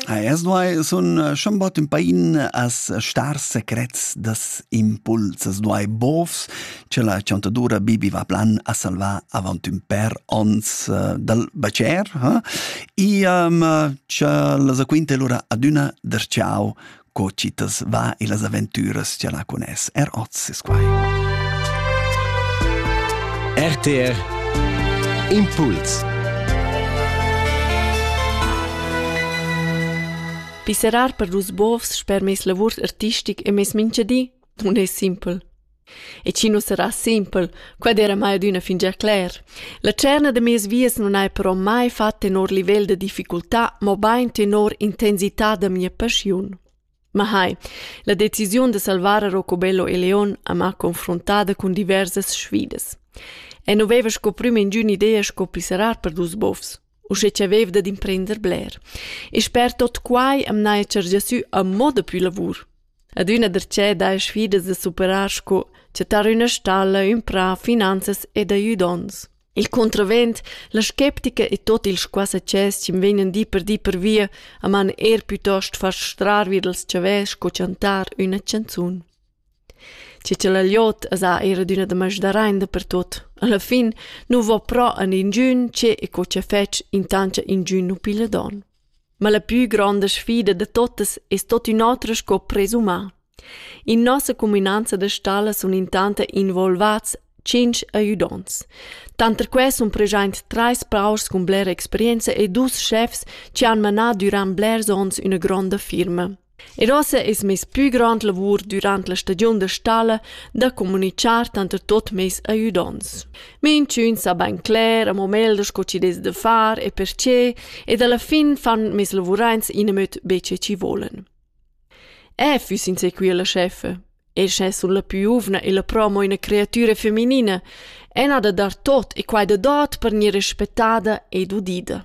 Es duai sun äh, schon bot ün pain as star secrets das impuls, as duai bofs, che la chantadura Bibi va plan a salvar avant ün per ons äh, dal bacer, eh? e um, che la zaquinte lura adüna der ciao co chitas va e las aventüras cha la cuness. Er oz es quai. RTR Impuls Pisserar per dus bovs sper mes lavurs artistic e mes minchadi nun es simpel. E chi nu sarà simpel, quad era mai adüna fingià cler. La tscherna da meis vias nun haja però mai fat tenor livel da difficultà, mobain tenor intensità da mia paschiun. Ma hai, la decisiun da salvar a Rocobello e Leon amà confrontada cun diversas sfidas. E nu veva sco prüm ingün idea sco pisserar per dus bofs. uschè cha vaiva dad imprender bler. E sper tot quai am n'haja chargià sü a moda pü lavur. Adüna darchè daja sfidas da superar sco chattar üna stalla, ün prà, finanzas ed aiudonts. Il contravent, la skeptica e tot il squassacès chi'm vegnan di per di per via a man eir pütost far strar vi dals chavè sco chantar üna chanzun. Tgi ch'el ha liot as ha eir adüna da masdar aint dapertuot. Alla fin nu vo però a ninchün che e co cha fetsch intancha inchün nu pigla don. Ma la pü gronda sfida da totas es tot ün'otra sco presumà. In nossa cuminanza da stalla sun intanta involvats tschinch aiudonts. Tanter quai sun preschaint trais praurs cun blera experienza e dus schefs chi han manà dürant blers ons üna gronda firma. Er ossa es meis pü grand lavur dürant la stagiun da stalla da comunichar tanter tuot meis aüdonts. Minchün sa bain cler amo meglder sco chi'd es da far e perche ed alla fin fan meis lavuraints inamöt be che chi volan. Eu füss in sequia la chefa. E sche sun la più giuvna e la promo üna creatüra feminina, e n'ha da dar tot e quai da dot per gnir rispettada ed udida.